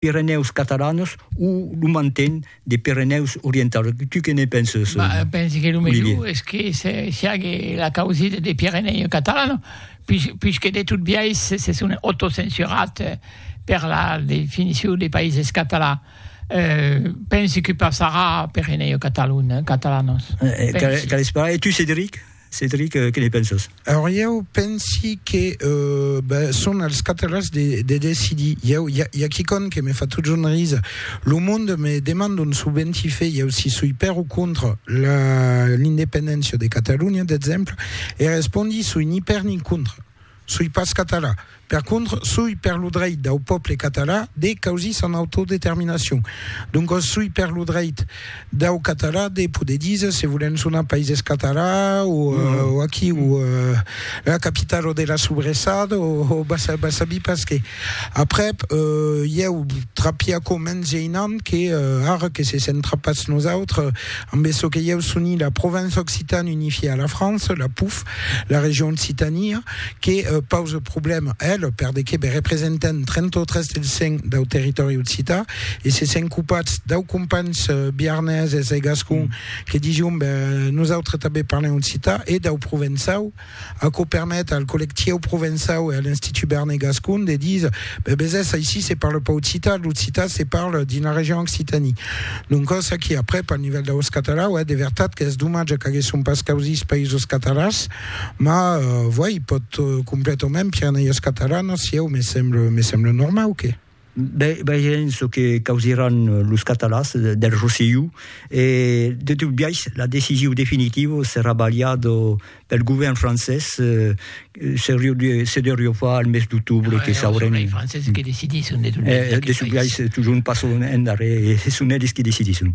Pirenèus Catalanos o lo manten de Pirenèus Orientaus? Tu que ne penses, Olivier? Bah, pensi que lo melhor es que se siague la causida de Pirenèus Catalanos, puish, puish que de tot biais se, se son autocensurat per la definicion de Païses Catalans. Euh, pensi que passarà Pirenèus Catalun, Catalanos. Pensi. Qu'a, qu'a l'esperar. E tu, Cedric? Cedric, que ne penses? Alors, ieu pensi que ben, son als catalans de, de decidir. Ieu, hi ha, hi ha quicon que me fa totjorn risa. Lo monde me demanda un subventifé, ieu si soi per o contra l'independéncia de Catalunya, d'exemple, e respondi soi ni per ni contra. Soi pas català. Per contra, soi per lo dreit dau pòble català de causir son autodeterminacion. Doncas soi per lo dreit dau català de poder díser se volèm sonar Païses Catalans o aquí o la capitala de la sobressada o va sabir pas qué. Aprèp, ieu trapi aquò mens geinant que ara que se sent trapats nosautres ambe çò que ieu soni la Provence Occitane unifiée à la France, la POUF, La region Occitània que pausa problèma a el per de que be representan 33 del 100 dau territòri occità e se sent copat dau companhs biarneses e gascon que dision be nosautres tanben parlem occità e dau provençau, aquò permet al collectieu provençau e a l'Institut Berner Gascon de díser Be besés, aicí se parle pas occitan, l'occitan se parle dins la region Occitanie. Doncòs aquí, aprèp, al nivèl d'aus catalans, uèi, de vertat qu'es domatge qu'aguèsson pas causís països catalans, ma, uèi, pòt completament Pirenèios Catalanos, sieu, me semble, me semble normau que. Be, veirem çò que causiràn los catalans del Rosselló, e, de tot biais, la decision definitiva serà balhada Eth govèrn francés se deuriu far al mes d'octobre que saurem. Es franceses que decidisson de tot. De sublaish, totjorn passon endarrèr e son elis qui decidisson.